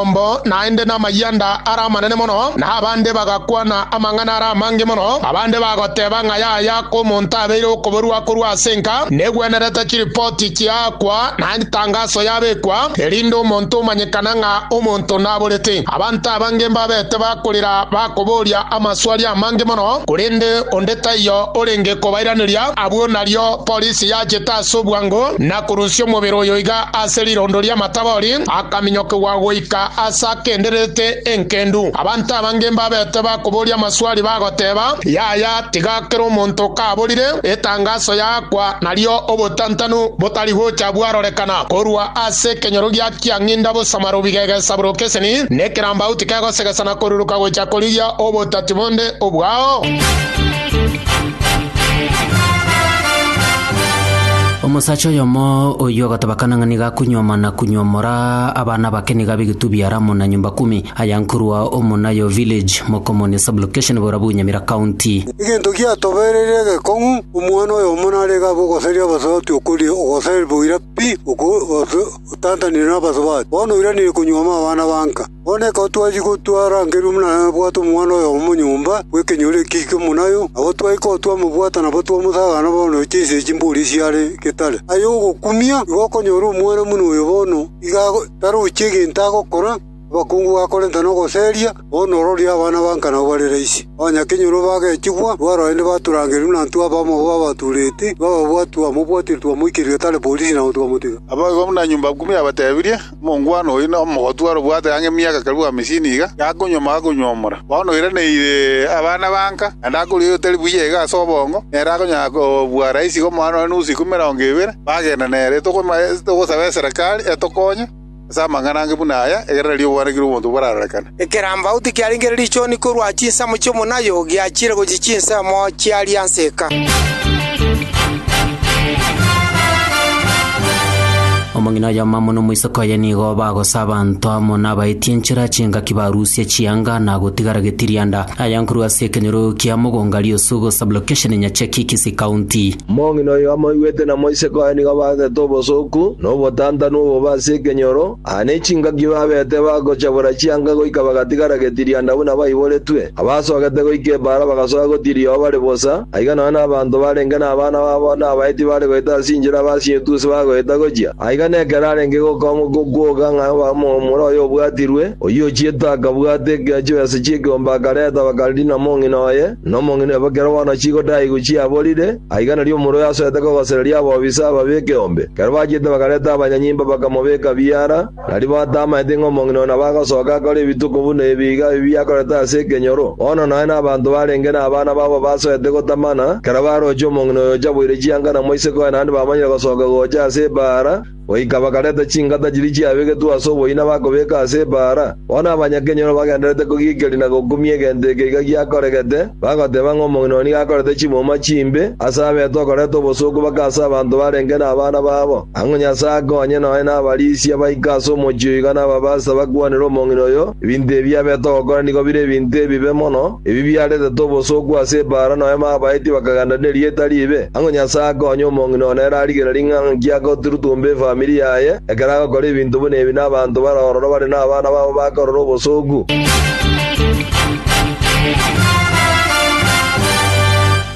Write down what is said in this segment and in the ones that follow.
Omba naende namayanda are amanene mono, na abande bagakwana amang'ana are amange mono. Abande bagoteba ng'a yaya kw'omonto abeire okoborua korwa ase enka, negwenerete chiripoti chiaakwa, na etangaso yabekwa, erinde omonto omanyekana ng'a omonto naborete. Abanto abange mbabete bakorira bakoboria amaswali amange mono, korende onde taiyo orenge kobairaneria. Abwo nario polisi yachete ase obwango na korusia omobere oyo iga ase rirondo ri'amataama. Tabori, akaminyokigwa goika aase akendererete enkendu. Abanto abange mbabete bakoboria amaswali bagoteeba, Yaya, tiga kera omonto kaborire etangaso yaakwa, nario obotantanu botari gocha bwarorekana korwa ase ekenyorogia kia ng'inda bosama rubigegesa bw'okeseni, nekerambau tikegosegesana koruruka gocha korigia obotati bonde obwao. Omosacha oyomo oyio agatobakana ng'a nigo akunyuoma na kunyuomora abana bake nigo abe egetubio yare amo na nyomba kumi, aya nkorwa Omonayo Village, Mokomoni Sub-location, Bora bwa Nyamira County. Egento giatobereirie egekong'u, omwana oyomo narenge abe ogoseria abasubati okoria ogoseria boira pi, oko, gose otantanire nabasubati. Bono oiranire konyuoma abana ba nka. “Bono ekero twachia gotwara Angelo buna nabwate omwana oyo omonyomba bw'ekenyoro ekio eke monayo, nabo twaika oo twamobwata nabo twamosaga na bono chinsa echi mbori chiare getari. Aye ogokumia igo okonyora omwana buna oyo bono iga tarochi egento agokora, abakungu bakorenta nogoseria, bono ororio abana banka nabo bare raisi. Onye akenyoro bagechigwa, twara aende batura Angelo buna intwe abamo babaturete, twababwati twamobwatire twamoikeria getari bori sinabo twamotiga.” Abwo igo buna nyumba ikumu yabatebirie. Omongwana oyo nomogotu arobwate ang'e emiaka karibu amisini iga, gakonyuoma akonywomora. Bono oiraneire abana banka, naende akoria oyotari buya iga ase obongo, nere akonyara kobua raisi omwana one nusu ikomi emerongo ebere, bagenda nere. Togosaba eserekari etokonye ase amang'ana ange buna aya, egerera ri'obwanekire bw'omonto borarorekane. Ekerambau tikiarenge richoni korwa chinsemo chi'omonayo, giachiire gochia chinsemo chia rianseka. Omong'ina oyomamo nomoiseke oye nigo bagosa abanto amo nabaetie enchera chingaki barusie chianga na gotigara getirianda. Aya nkorwa ase ekenyoro kia Mogonga Riosugu Sub-location Nyacheki Kisii County. Omong'ina oyo amoigwete na moiseke oye nigo baasete obosooku na obotantanu obobe ase ekenyoro. Aya nechingaki babeete bagochabora chianga goika bagatigara getirianda buna baiboretwe. Abasogete goika ebaara bagasoa gotiria oo bare bosa, aiga nonya nabanto barenge nabana babo na abaiti bare goeta ase inchera baasie etusi bagoeta gochia. Aiga nekero arenge gokoamwa gokwoga ng'a omomura oye obwatirwe, oyio ochiete akabwata ekero chibesa chi'ekeombe akareta bakarina mong'ina oye, na omong'ina oye bakera bono chigodaigwa chiaborire, Aiga nario omorua yasoete kogosereria abobisa ababe ekeombe. Ekero bachiete bakareta abanyanyimba bakamobeka biara, na riba batamaete ng'a omong'ina oyo nabo agosoka akore ebituko buna ebi iga ebi biakorete ase ekenyoro. Bono naye na abanto barenge nabana babo basoete gotamana, ekero baroche omong'ina oyo ocha boire chianga na moiseke oye naende bamanyire gosoka gocha ase ebaara, Goika bakareta chingata chiria chiabegetwe ase oboina bakobeka ase ebaara. Bono abanyakenyoro bagendererete kogiikeria na gokumia egento eke iga giakoregete, bagoteba ng'a omong'ina oo nigo akorete chimuma chimbe ase abeete okoreta obosooku bake ase abanto barenge nabana babo. Ang'o Nyasae akonye nonya nabarisia baike ase omochie oyo iga nababase bakwanere omong'ina oyo ebinto ebi abeete ogokora nigo bire ebinto ebibe mono? Ebi biaretete obosooku ase ebaara, nonya babaetie bakagenda nerieta riibe. Ang'o Nyasae akonye omong'ina one ere arigererie ng'a nki agoturutumba efamiri yaye, ekero agokora ebinto buna ebi nabanto bare ororo bare nabana babo bakorora obosooku?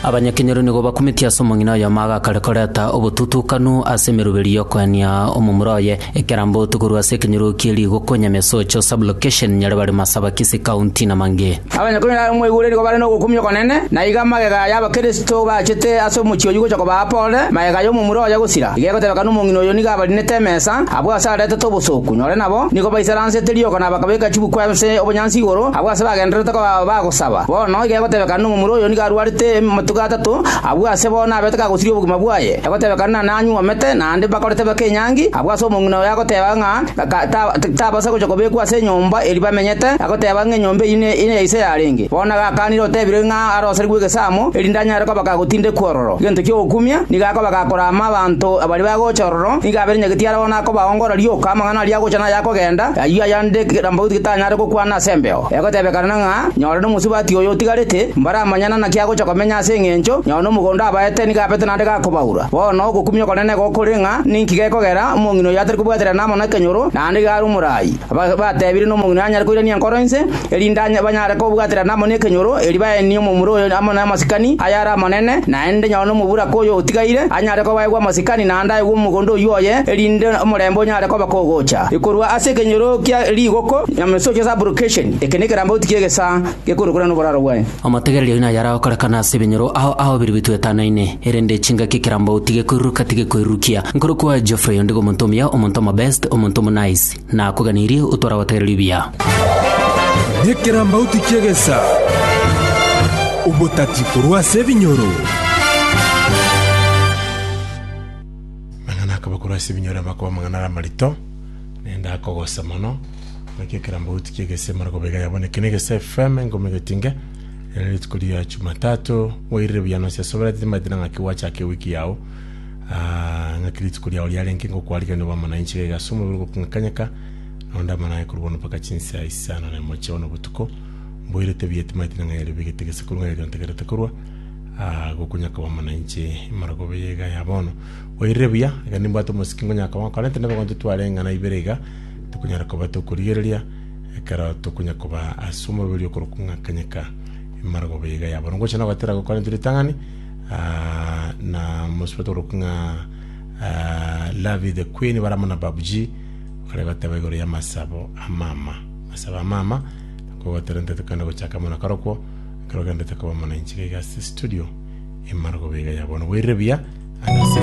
Abanyakenyoro nigo bakumetie ase omong'ina oyomo agakare koreta obotutukanu ase emeroberi y'okoenia omomura oye. Ekerambo to korwa ase ekenyoro kie rigoko Nyamesocho Sub-location Nyaribari Masabakisi County na mang'e. Abanyakuri na omwegure nigo bare nogokumia okonene, na iga magega y'Abakristo bachete ase omochie oyio gocha kobaa pole, magega y'omomura oye gosira. Iga egotebeka nomong'ina oyo nigo abarinete emesa, abwo ase aretete obosooku, nore nabo nigo baisaransete riiko na bakabeka chibukwa ase obonyansi igoro, abwo ase bagendererete koba bagosaba. Bono iga egotebeka nomomura oyo nigo arwarete amatuko atato, abwo ase bono nabete kagosiria obogima bwaye. Egotebekana na nanyuomete, naende bakoritebeka enyangi, abwo ase omong'ina oye agoteba ng'a tabasa gocha kobekwa ase enyomba eria bamenyete, agoteba ng'a enyomba eyio neya ise yarenge. Bono iga akanire otebire ng'a arosarigwe egesamu, erinde anyare koba gagotindekwa ororo. Egento ki'ogokumia, nigo akoba gakorama abanto baria bagocha ororo, nigo aberenyagetie aro bono akobaongora rioka amang'ana aria agocha na ayakogenda, ayio ayande kerambaoti getanyare gokwana ase embeo. Egotebekana ng'a nyore nomosubati oyo otigarete, mbaramanyana naki agocha komenya ase engencho nyore nomogondo abaete nigo apete naende gakobaura. Bono ogokumia okonene igo kore ng'a ninki gekogera omong'ina oyo atari kobwaterana amo nekenyoro naende iga are omoraai. Batebire nomong'ina oyo anyare koirania enkoro ense, erinde banyare kobwaterana amo nekenyoro, erio baenie omomura oyo amo namasikani ayare amanene, naende nyore nomoburaka oyo otigaire anyare kobaegwa amasikani naende aegwe omogondo oyio oye, erinde omorembe onyare koba kogocha korwa ase ekenyoro kia rigoko. Nyamesocho Sublocation. Eke nekerambauti ki'egesaa gekorwa korana noboraro bwaye. Amategererio aino ayare agokorekana ase ebinyoro ao ao biria bitwetanaine, erende chingaki ekerambauti gekoiruruka tigekoirurukia. Nkoro kwaye Geoffrey onde omonto omuya, omonto omobest, omonto omonice. Nakoganirie otware abategererio buya. Nekerambauti ki'egesaa, obotati korwa ase ebinyoro. Amang'ana akaba korwa ase ebinyoro amakoba amang'ana are amarito. Nende akogose mono, naki ekerambauti ki'egesemero kobega yabonekire negese FM engomo egetinge, ere rituko ria Chumatatu. Moirire buya nonsi ase obwrate timaete na ng'aki gwachaka ewiki yao, ah, ng'aki rituko riao riarenge ngokwarigereria obe amo nainche gaiga ase omobere ogoking'akanyeka, nonde amo naye korwa bono mpaka chinsa isano na emochie bono botuko. Mboirete buya timaete na ng'ai yaribegete gese korwa ng'ai yariontegerete korwa, ah, gokonyaka obe amo nainche imara kobe yaiga yabono. Oirire buya, iga nimbwate omosike nkonyaa koba nkorente nebigonto titware eng'ana ibere iga, tokonyara koba tokorigereria ekero tokonya koba ase omorweri okorokwa ng'a Kanyika. Imara koba iga yabo. Ngocha nogatera gokorente ritang'ani ah, na mosubati okorokwa ng'a ah, Lavi the Queen bare amo na Babu G bare goteba igoro ya masabo a mama. Masabo a mama kogoterente tokende gochaka amo na karokwo ekero ogendete koba mona inchera iga ase studio imara koba iga ya bono. Boirire buya ase season